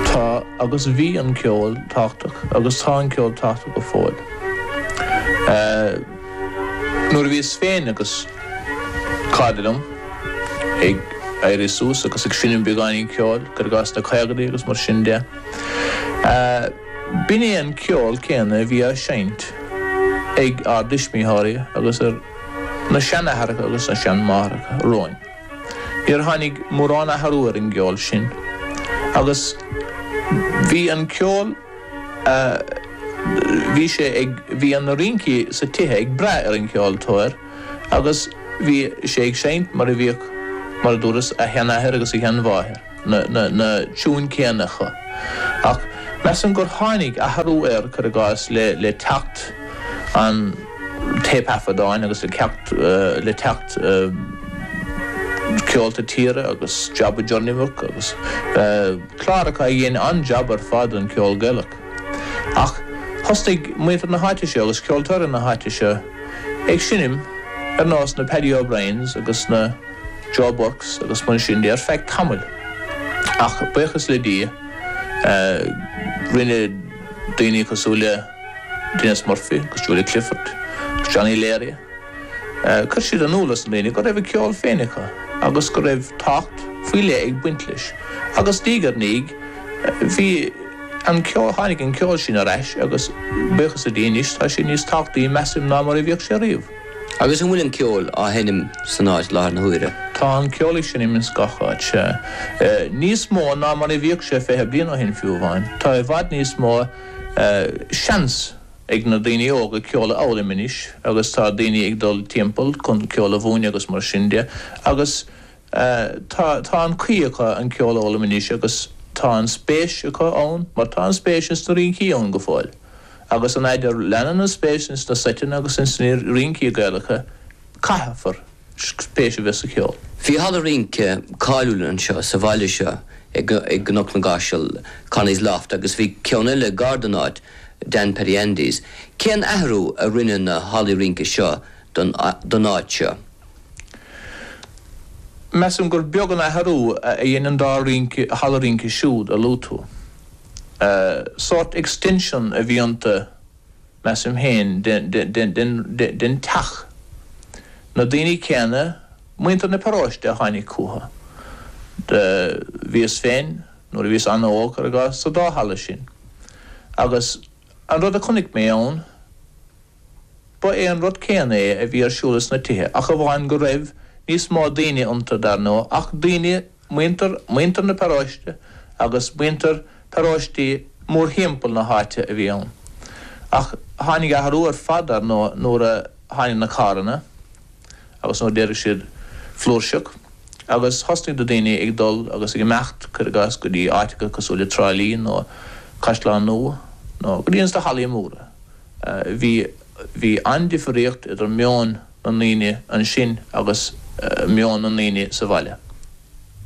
Tá agus bhí an ceol tábhachtach agus tá an ceol tábhachtach go fóill. Nuair a bhíos féin agus cairde liom ag éirí suas agus ag seinm beagáinín ceoil, cuir i gcás sna caogaidí agus mar sin de, b'in é an ceol céanna a bhí á seinnt ag ár dtuismitheoirí agus ar na seanaithreacha agus na seanmáithreacha romhainn. Níor tháinig mórán athrú ar an gceol sin agus bhí an ceol a bhí sé ag, bhí na rincí sa tithe ag brath ar an gceoltóir agus bhí sé ag seinnt mar a bhíodh, mar a dúras, a sheanathair agus a sheanmháthair. na tiúin céanna acu ach measaim gur tháinig athrú air, cuir i gcás, le teacht an téipthaifeadáin agus le teacht le teacht Ceolta Tíre agus Job of Journeywork agus cláracha a dhein an-jab ar fad don cheol Gaelach. Ach thosnaigh muintir na háite seo agus ceoltóirí na háite seo ag seinm ar nós na Paddy O'Briens agus na. Joe Burkes agus mar sin de ar feadh tamaill. Ach buíochas le Dia rinne daoine cosúil le Denis Murphy agus Julia Clifford agus Johnny Leary, chuir siad in iúl dos na daoine go raibh a ceol féin acu agus go raibh tábhacht faoi leith ag baint leis. Agus diaidh ar ndiaidh bhí an ceol, tháinig an ceol sin ar ais agus buíochas le Dia anois tá sé níos tábhachtaí measaim ná mar a bhíodh sé riamh. Agus an bhfuil an ceol á sheinm san áit i láthair na huaire? Tá an ceol á sheinm ins gach áit. Níos mó ná mar a bhíodh sé fiche bliain ó shin fiú amháin. Tá i bhfad níos mó seans ag na daoine óga ceol a fhoghlaim anois agus tá daoine ag dul timpeall chun ceol a mhúineadh agus mar sin de agus Tá, tá an chaoi acu an ceol a fhoghlaim anois agus tá an spéis acu ann mar tá an spéis ins na rincí ann go fóill agus an fhaid a leanann an spéis ins na seiteanna agus ins na rincí Gaelacha caithfear spéis a bheith sa cheol. Bhí halla rince cáiliúil anseo sa bhaile seo i gCnoc na gCaiseal, Connie's Loft agus bhí ceann eile gar don áit, Dan Paddy Andy's. Cén athrú a rinne na hallaí rince seo don áit seo? Measaim gur beag an athrú a dhein an dá rinc halla rince siúd a luaigh tú. Sórt extension a bhí iontu, measaim féin, de den teach. Na daoine céanna, muintir na paróiste a tháinig chucu. Bhíos féin, nuair a bhíos an-óg, cuir i gcás, sa dá halla sin agus, An rud a chonaic mé ann, ba é an rud céanna é a bhí ar siúl ins na tithe, ach amháin go raibh níos mó daoine iontu, dar ndóigh, ach daoine, muintir, muintir na paróiste agus muintir paróistí mórthimpeall na háite a bhí ann. Ach tháinig athrú ar fad, dar ndóigh, nuair a tháinig na carranna. agus nuair a d'éirigh siad flúirseach agus thosnaigh na daoine ag dul agus ag imeacht, cuir i gcás, go dtí áiteacha cosúil le Trá Lí nó Caisleán Nua nó go dtí ins na hallaí móra, bhí, bhí an-difríocht idir meon na ndaoine ansin agus meon na ndaoine sa bhaile.